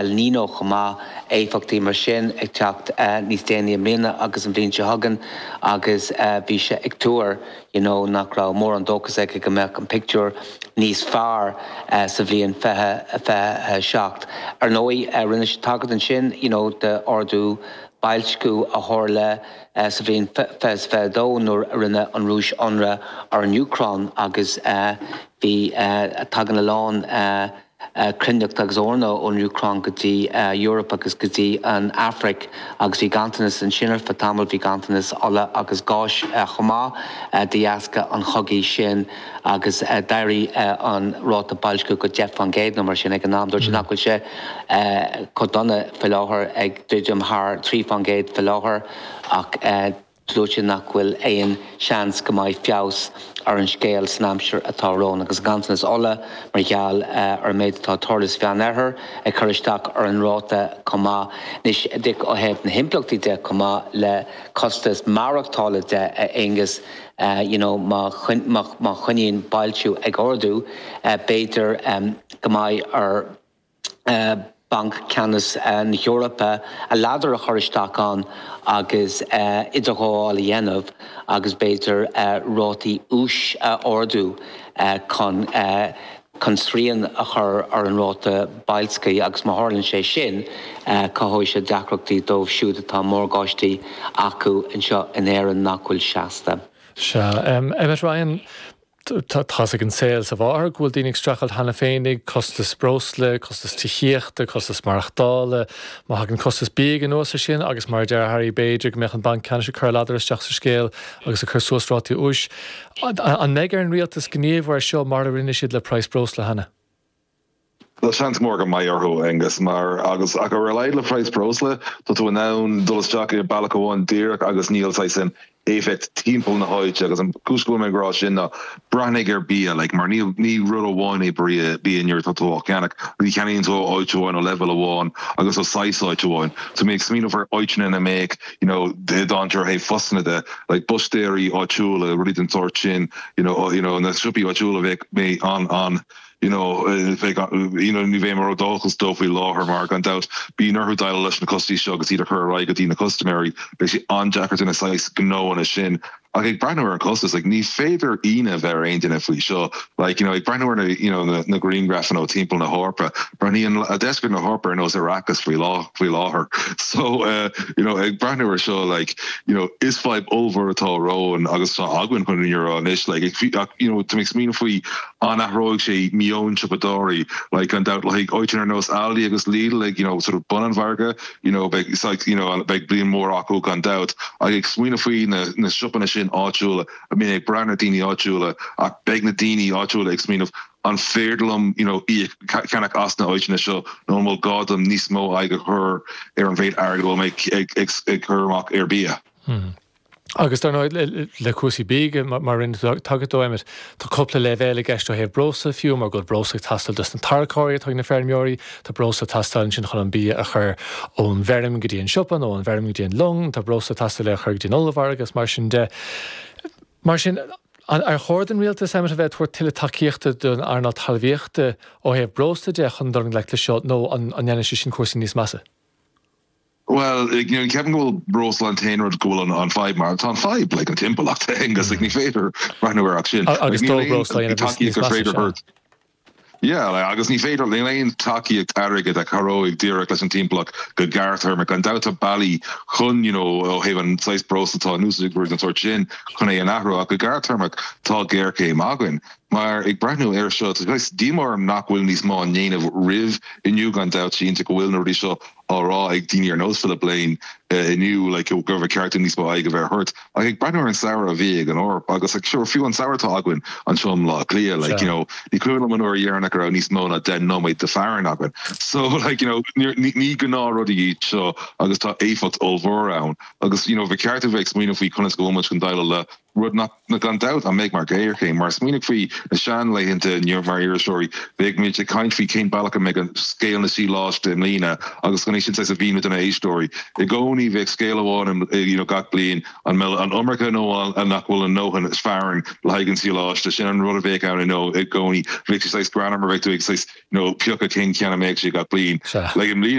El Niño chomh maith, éifeachtaí mar sin ag teacht níos déanaí i mbliana agus an bhliain seo chugainn agus bhí sé ag tuar you know nach raibh mórán dóchas aige go mbeadh an pictiúr níos fearr sa bhliain 2027. Ar ndóigh, rinne sé tagairt ansin you know d'ardú boilsciú a tharla sa bhliain 2022 nuair a rinne an Rúis ionradh ar an Úcráin agus bhí, tagann a lán cruithneacht agus eorna ón Úcráin go dtí Eoraip agus go dtí an Afraic agus bhí ganntanas ansin ar feadh tamaill, bhí ganntanas ola agus gáis chomh maith de dheasca an chogaidh sin agus d'éirigh an ráta boilscithe go 10 fán gcéad nó mar sin ag an am. Dúirt sé nach bhfuil sé chomh dona faoi láthair, ag druidim thar 3 fán gcéad faoi láthair ach, Dúirt sé nach bhfuil aon seans go mbeidh feabhas ar an scéal san aimsir atá romhainn agus an ganntanas ola mar gheall ar an méid atá ag tarlú sa Mheánoirthear ag cur isteach ar an ráta chomh maith. Anois díreach ó thaobh na himpleachtaí de chomh maith le costas maireachtála de, a Aonghuis, you know má choinníonn boilsciú ag ardú b'fhéidir go mbeidh ar. Banc Ceannais na hEorpa, a ladar a chur isteach ann agus idirghabháil a dhéanamh agus b'fhéidir rátaí úis a ardú chun chun srian a chur ar an ráta boilscithe agus má tharlaíonn sé sin cothóidh sé deacrachtaí dóibh siúd atá morgáistí acu anseo in Éirinn nach bhfuil seasta. Sea. Emmet Ryan, Tá a fhios ag an saol is a mháthair go bhfuil daoine ag streachailt cheana féin ag costas breosla, costas tithíochta, costas maireachtála. Má thagann costas bia anuas ar sin agus mar a deir Harry b'fhéidir go mbeadh an Banc Ceannais ag cur a ladar isteach sa scéal agus ag cur suas rátaí úis. An mbeidh ar an rialtas gníomhú ar seo mar a rinne siad le praghas breosla cheana? Tá seans mór go mbeidh orthu, Aengus, mar agus ach ar a laghad le praghas breosla, tá tú in ann dul isteach ar bealach amháin díreach agus níl saghas an éifeacht timpeall na háite agus an cúis go bhfuil mé ag rá sin ná breathnaigh ar bia like mar ní ní rud amháin é bria bia nuair atá tú á cheannach agus ní cheannaíonn tú ó áit amháin ó leibhéal amháin agus ó saghas áit amháin so mé ag smaoineamh ar áiteanna ina mbeadh you know i dtaobh ar thaobh fosanna de like búistéirí áitiúla rudaí den tsórt sin you know you know na siopaí áitiúla bheadh mé an an you know, you know, ní bheidh mé ródhóchasach dóibh faoi láthair mar gan dabht bíonn orthu déileáil leis na costais seo agus iad a chur ar aghaidh go dtí na custaiméirí, beidh sé an-deacair d'éinne saghas gnó mar sin ach ag breathnú ar an chostas, like, ní féidir ionadh a bheith ar aon duine faoi seo, like, you know, ag breathnú ar na, you know, na grianghrafanna ó timpeall na hEorpa, breathnaíonn deisceart na hEorpa ar nós Arrakis faoi láthair, faoi láthair, so, uh, you know, ag breathnú ar seo, like, you know, is fadhb ollmhór atá romhainn agus atá againn chun na fírinne a rá anois, like, ag, ach, you know, tá mé ag smaoineamh faoi an athróidh sé meon siopadóirí like gan dabht like áiteanna ar nós Aldi agus Lidl like you know sort of bun an mhargaidh you know beidh saghas you know beidh bliain mhór acu gan dabht ach ag smaoineamh faoi na na siopanna sin áitiúla a mbíonn ag brath ar na daoine áitiúla ach beidh na daoine áitiúla ag smaoineamh an féidir liom you know íoc ceannach as na áiteanna seo nó an bhfuil gá dom níos mó aghaidh a chur ar an mhéid airgid a bhfuil mé ag ag ag cur amach ar bia. Agus dar ndóigh, le cúrsaí bia, mar a rinne tú tagairt dó, Emmet, tá cúpla leibhéal i gceist ó thaobh breosla de fiú, mar go bhfuil breosla ag teastáil dos na tarracóirí atá ag na feirmeoirí, tá breosla ag teastáil ansin chun an bia a chur ón bhfeirm go dtí an siopa nó ón bhfeirm go dtí an long, tá breosla ag teastáil é a chur go dtí an ollmhargadh agus mar sin de. Mar sin, ar chóir don rialtas, Emmet, a bheith ag tabhairt tuilleadh tacaíochta don earnáil talmhaíochta ó thaobh breosla de chun dul i ngleic leis seo nó an ndéanfaidh sé sin cúrsaí níos measa? Bhuel, níl, ceapaim go bhfuil breosla an t-aon rud go bhfuil an fadhb mar atá an fadhb, like, an timpeallacht, like, ní féidir breathnú ar ach sin. Agus ní féidir, níl aon tacaíocht airgid a chabhróidh díreach leis an timpeallacht go gearrthéarmach. Gan dabht tá bealaí chun, you know, ó thaobh an saghas breosla atá in úsáid ag rud den tsórt sin chun é a athrú ach go gearrthéarmach tá géarchéim againn. Mar, ag breathnú air seo, tá saghas díomá orm nach bhfuil níos mó á ndéanamh roimh inniu, gan dabht, cinnte go bhfuil na rudaí seo á rá ag daoine ar nós Philip Lane inniu like go raibh ceart níos mó aghaidh a bheith ar short ach ag breathnú ar an samhradh a bhí ag an Eoraip agus like sure fiú an samhradh atá againn anseo i mBleá Cliath like you Sure. know ní cuimhin liom an uair dheireanach a raibh níos mó ná deich nóiméad de fearthainn againn so like you know níor ní ní gnáth rudaí iad seo agus tá éifeacht ollmhór ann agus you know bheadh ceart a bheith ag smaoineamh faoi conas go bhfuil muid chun déileáil le rud nach, gan dabht, an mbeidh mar ghéarchéim. Mar smaoinigh faoi na seanlaethanta inniu, mar iriseoirí, bheadh muid ag caint faoi cén bealach a mbeidh an scéal na sadhláiste i mbliana agus chun é sin saghas a mhíniú do na héisteoirí. I gcónaí bheadh scéal amháin in, you know, gach bliain, an mbeidh an iomarca nó an nach bhfuil an ndóthain fearthainn le haghaidh an sadhláiste. Sin an rud a bheadh ann, you know, i gcónaí. Bheadh sé saghas greannmhar, bheadh tú ag saghas, you know, piocadh cén ceann a mbeadh sé gach bliain. Sea. Like i mbliana.